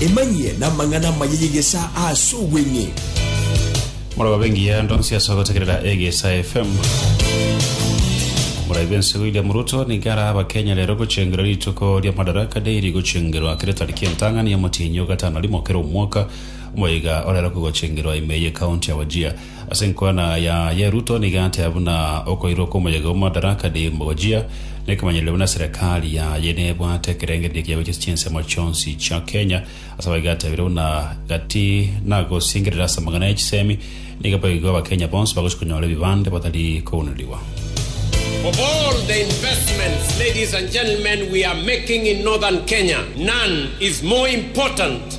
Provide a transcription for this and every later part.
Emanyie namang'ana amaya y'egesa ase obweng'e. Moroba bengiya ndonsi ase ogotegerera Egesa FM. Moraibe ense William Ruto nigo ara abakenya rero gochengera rituko ria Madaraka Day rigochengerwa kere tariki entang'ani ya Omotienyi o gatano rimo kera omwaka, omoiga orero kogochengerwa ime ye county ya Wajir. Ase enkwana ya ye Ruto nigo atea buna okoirwa kw'omoyega o Madaraka Day mogojia nekemanyererio buna serekari yaye nebwate ekerengererio kia gochia chinsemo chionsi chia Kenya. Ase abwo iga atebire buna gati nagosingerera ase amang'ana ya chisemi nigo boigo abakenya bonsi bagochia konyora ebibande batari kounerigwa. Of all the investments, ladies and gentlemen, we are making in Northern Kenya, none is more important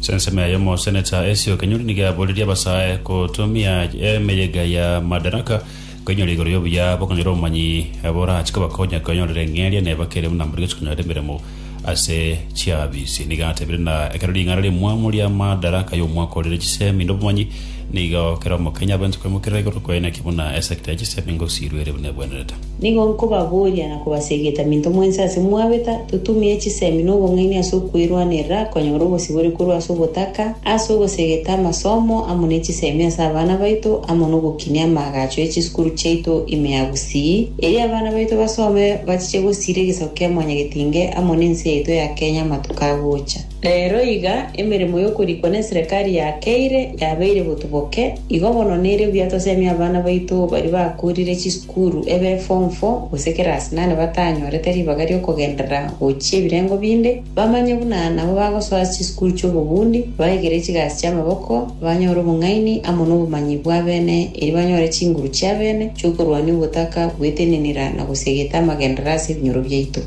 Ase ensemo ya yomo seneta Esio Kenyori nigo aboririe abasae gotumia emeyega ya Madaraka koinyora igoro y'obuya bokonyora obomanyi borache kobakonya koenyorera eng'eria ne bakere buna mbori gochia konyora emeremo ase chiafisi. Nigo atebire na ekero ring'ana ri'omwaomo ria Madaraka y'omwaka orire chisemi na obomanyi nigo kera Omokenya abwenerete koimokerera igoro koeneki buna esecta ya chisemi ngosiirwe ere buna ebwenerete. Nigo nkobaboria na kobasegeta minto mwensi ase mwabeta, totumie chisemi na obong'aini ase okwerwanerera konyora obosibore korwa ase obotaka, ase ogosegeta amasomo amo ne chisemi ase abana baito, amo nogokinia amaagacho e chisukuru chiaito ime ya gusii, erio abana baito basome bachiche gosiira egesaku kia Mwanyagetinge amo nense yaito ya Kenya amatuko agocha. Reero iga emeremo y'okorikwa n'eserekari ya Keire yabeire botuboke, igo bono nere buya tosemie abana baito baria bakoorire chisukuru ebe Form Four gose Class Nane batanyorete ribaga ri'okogenderera gochia ebirengo binde, bamanye buna nabo bagosoa ase chisukuru chi'obobundi, baegere chigasi chi'amaboko, banyore obong'aini amo nobomanyi bw'abene, erio banyore chinguru chi'abene chi'okorwania obotaka bw'etenenera na gosiegeta amagenderera ase ebinyoro biaito.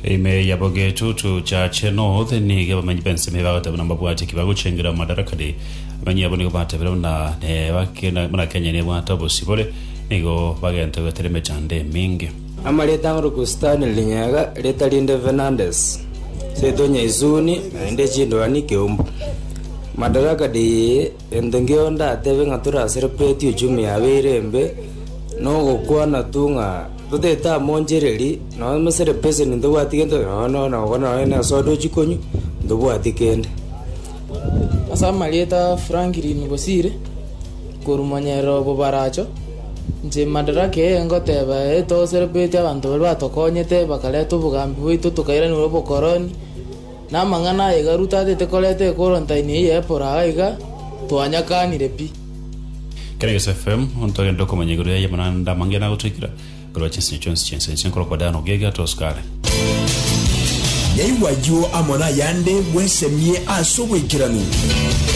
Ime yabo getutu Church North nigo abamenyi b'ensemo eye bagoteba buna mbabwati eki bagochengera mu Madarakani. Abamenyi abo nigo batebire buna nebakina- buna Kenya nebwate obosibore, nigo bagenta goetera emechando eminge. Amareta ang'e Luku Stanley Linyaga, reta rinde Fernandes, Seito Nyaisuni, naende chindwani Keumbu. Madaraka Day eye. Gento nkio ndatebe ng'a torasere kweti uchumi yaabo ere embe, nogokwana tu ng'a totaete amo onchereri, nonya mesere peseni ntobwati gento, nonya nonya nogokwana nonya nesoda ochie konywa, ntobwati kende. Ase amarieta a Franklin Bosire korwa monyerere o Bobaracho, inche Madaraka eye ngoteba eye toserebeti abanto baria batokonyete bakareta obogambi bwaito tokairaneria obokoroni, Namang'ana aye Garu tatete koreta ekworontaini eye epora aiga, twanyakanire pi. Keregeso FM, ntogende okomanya igoro yaye buna nda amangena agotoikera, igoro wa chinsinyo chionsi chi'ense inche nkore okodaana okuya iga atosuka are. Yaigwa ayio amo nayande bwesemie ase obwaikeranu.